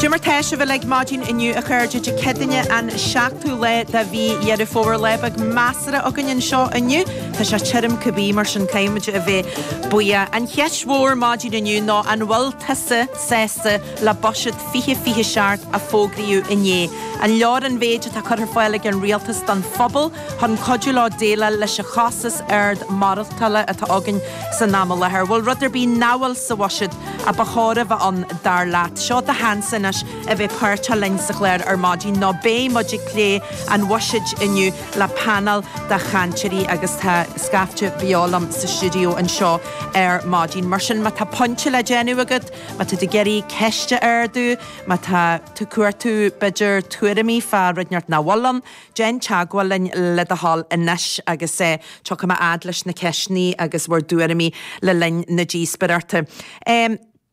Dé mar atá sibh uilig maidin inniu a chairde Dé Céadaoine an seachtú lá de mhí Dheireadh Fómhair. Lá beag measartha againn anseo inniu. Tá sé tirim cibé mar sin caithfimid a bheith buíoch. An cheist mhór maidin inniu ná an bhfuil tusa sásta le buiséad 2027 a fógraíodh inné? An leor an mhéid atá curtha ar fáil ag an rialtas don phobal? chun cuidiú leo déileáil leis an chostas ard maireachtála atá againn san am i láthair. Bhfuil rud ar bith nach bhfuil sa bhuiséad a ba chóir a bheith ann dar leat? Seo do sheans anois a bheith páirteach linn sa chlár ar maidin nó beidh muid ag plé an bhuiséid inniu le paineál de chainteoirí agus tá scaifte beo liom sa stiúideo anseo ar maidin. Mar sin má tá pointe le déanamh agat, má tá tú ag iarraidh ceist a ardú, má tá tú ag cuartú b'fhéidir tuairimí fá rud inteacht nach bhfuil ann, Déan teagmháil linn le do thoil anois agus tiocfaidh mé a fhad leis na ceisteanna agus bhur dtuairimí le linn na díospaireachta.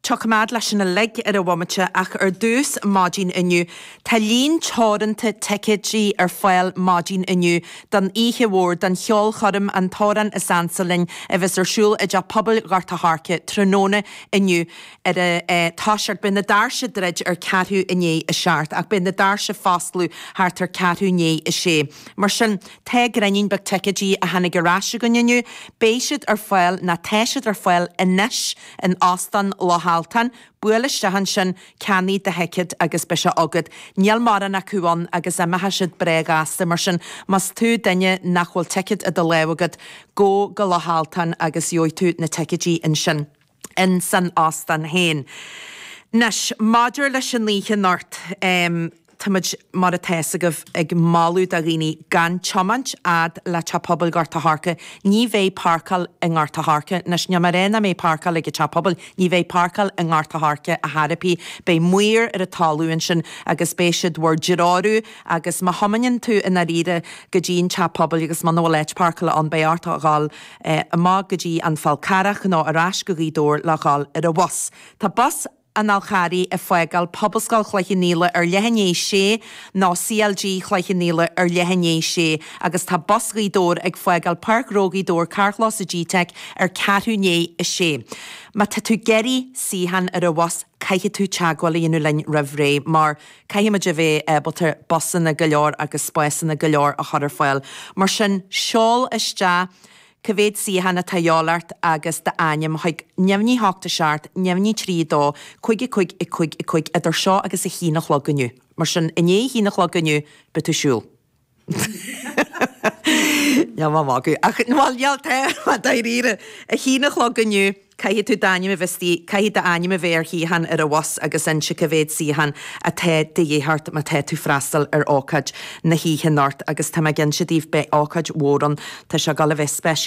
Tiocfaidh mé a fhad leis sin uilig ar an bhomaite ach ar dtús, maidin inniu, tá líon teoranta ticéidí ar fáil maidin inniu don oíche mhór, don cheolchoirm An tAmhrán is Ansa Linn a bheas ar siúl i dTeach Pobail Ghort a' Choirce tráthnóna inniu. ag toiseacht beidh na doirse ag druid ar ceathrú i ndiaidh a seacht ach beidh na doirse ag foscladh thart ar ceathrú ndiaidh a sé. Mar sin tá gráinnín beag ticéidí a tháinig ar ais againn inniu beidh siad ar fáil nó tá siad ar fáil anois in Óstán Loch Altan buail isteach ansin ceannaigh do thicéad agus beidh sé agat. Níl mórán acu ann agus imeoidh siad breá gasta mar sin más tú duine nach bhfuil ticéad i do lámh agat gabh go Loch Altan agus gheobhaidh tú na ticéidí ansin. ins an óstán féin. Anois, maidir leis an oíche anocht, táimid, mar atá fhios agaibh, ag moladh do dhaoine gan tiomáint fhad le Teach Pobail Ghort a' Choirce. Ní bheidh páirceáil i nGort a' Choirce. Anois, níl mé ag rá nach mbeidh páirceáil ag an Teach Pobail, ní bheidh páirceáil i nGort a' Choirce ar chor ar bith. Beidh maoir ar an talamh ansin agus beidh siad bhur dtreorú agus má thiomáineann tú i ndáiríre go dtí an Teach Pobail agus muna bhfuil áit páirceála ann beidh ort a dhul amach go dtí an Fál Carrach nó ar ais go Gaoth Dobhair le dhul ar an bhus. Tá bus an Fhál Charraigh ag fágáil Pobalscoil Chloich Cheannfhaola ar leath i ndiaidh sé nó CLG Chloich Cheannfhaola ar leath i ndiaidh sé agus tá bus Ghaoth Dobhair ag fágáil Páirc Ghnó Ghaoth Dobhair carrchlós an GTeic ar ceathrú ndiaidh a sé. Má tá tú ag iarraidh suíochán ar an bhus caithfidh tú teagmháil a dhéanamh linn roimh ré mar Caithfimid a bheith ábalta busanna go leor agus spásanna go leor a chur ar fáil. Mar sin, seol isteach cá mhéad suíochán atá a dhíobháil ort agus d'ainm chuig, neamhní a hocht a seacht, neamhní trí a dó, cuig a cuig a cuig a cuig idir seo agus a haon a chlog inniu. Mar sin, i ndiaidh a haon a chlog inniu, beidh tú ag siúl. Níl mé ag magadh. Ach, bhuel, bhuel, tá mé dáiríre. Ag a haon a chlog inniu, caithfidh tú d'ainm a bheith istigh, caithfidh d'ainm a bheith ar shuíochán ar an bhus agus inse cá mhéad suíochán atá de dhíth ort má tá tú ag freastal ar ócáid na hoíche anocht. Agus tá mé ag inse daoibh, beidh ócáid mhór ann. Tá sé ag dul a bheith spéisiúil.